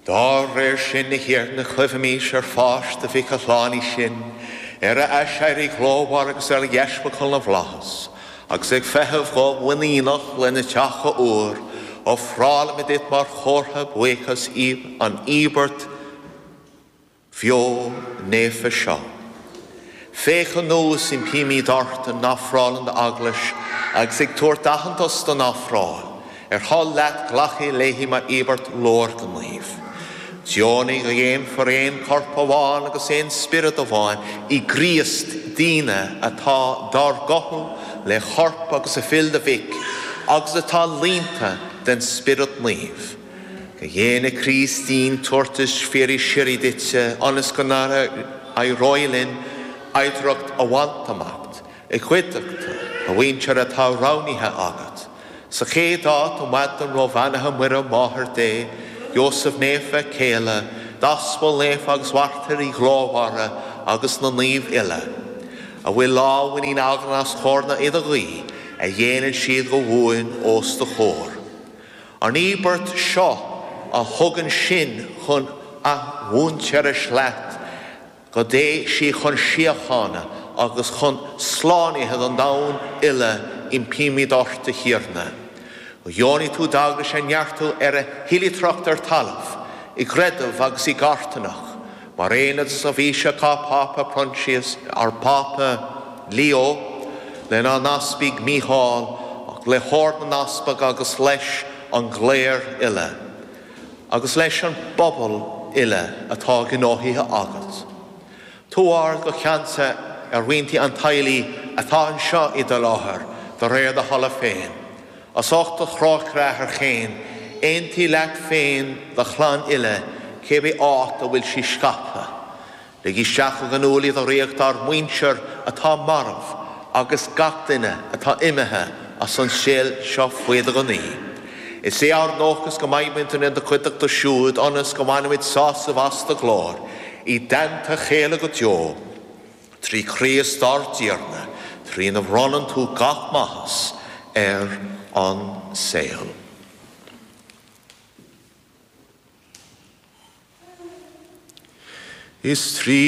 Dá réir sin, a Thiarna, cuimhnímis ar pháis do Mhic a shlánaigh sinn, ar a aiséirí glórmhar agus ar a dheascabháil na bhflaitheas, agus ag feitheamh go muiníneach lena theacht athuair, ofrálaimid duit mar chomhartha buíochas an íobairt bheo naofa seo. Féach anuas, impímid ort, ar ofráil d'Eaglais, agus ag tabhairt aitheantas don ofráil ar thoil leat glacadh léi mar íobairt leorghnímh. Deonaigh go ndéanfar aon chorp amháin agus aon spiorad amháin i gCríost, dínne atá dár gcothú le corp agus le fuil do Mhic, agus atá líonta den Spiorad Naomh. Go ndéana Críost dínn tabhartas fíor síoraí duit ionas go n-éireoidh linn oidhreacht a bhaint amach i gcuideachta do mhuintir atá roghnaithe agat. Sa chéad áit, an Mhaighdean Ró-Bheannaithe Muire, Máthair Dé, Iósaf Naofa, a céile, d'Aspail Naofa agus mairtírigh ghlórmhara agus na naoimh uile, a bhfuil lánmhuinín againn as cabhair na hidirghuí a dhéanann siad go buan os do chomhair. An íobairt seo a thugann sinn chun athmhuintearais leat, go dté sí chun síochána agus chun slánaithe don domhan uile, impímid ort, a Thiarna. Go ndeonaí tú d'Eaglais a neartú ar a hoilithreacht ar talamh, i gcreideamh agus i gcarthanacht, Mar aon le do sheirbhíseach ár bPápa Proinsias ár bPápa Leo, lenár n-easpag Mícheál, le hOrd na nEaspag agus leis an gcléir uile agus leis an bpobal uile atá gnóthaithe agat. Tabhair go ceansa ar mhianta an teaghlaigh atá anseo i do láthair, de réir do thola féin. As ucht do thrócaire, a Athair chaoin, aontaigh leat féin do chlann uile cibé áit a bhfuil sí scaipthe. Lig isteach go cineálta i do ríocht ár muintir atá marbh agus gach duine atá imithe as an saol seo faoi do ghnaoi. Is é ár ndóchas go mbeimid ina gcuideachta siúd ionas go mbainfimid sásamh as do ghlóir i dteannta chéile go deo. Trí Chríost ár dTiarna, trína bhronnann tú gach maitheas ar an saol. Is trí.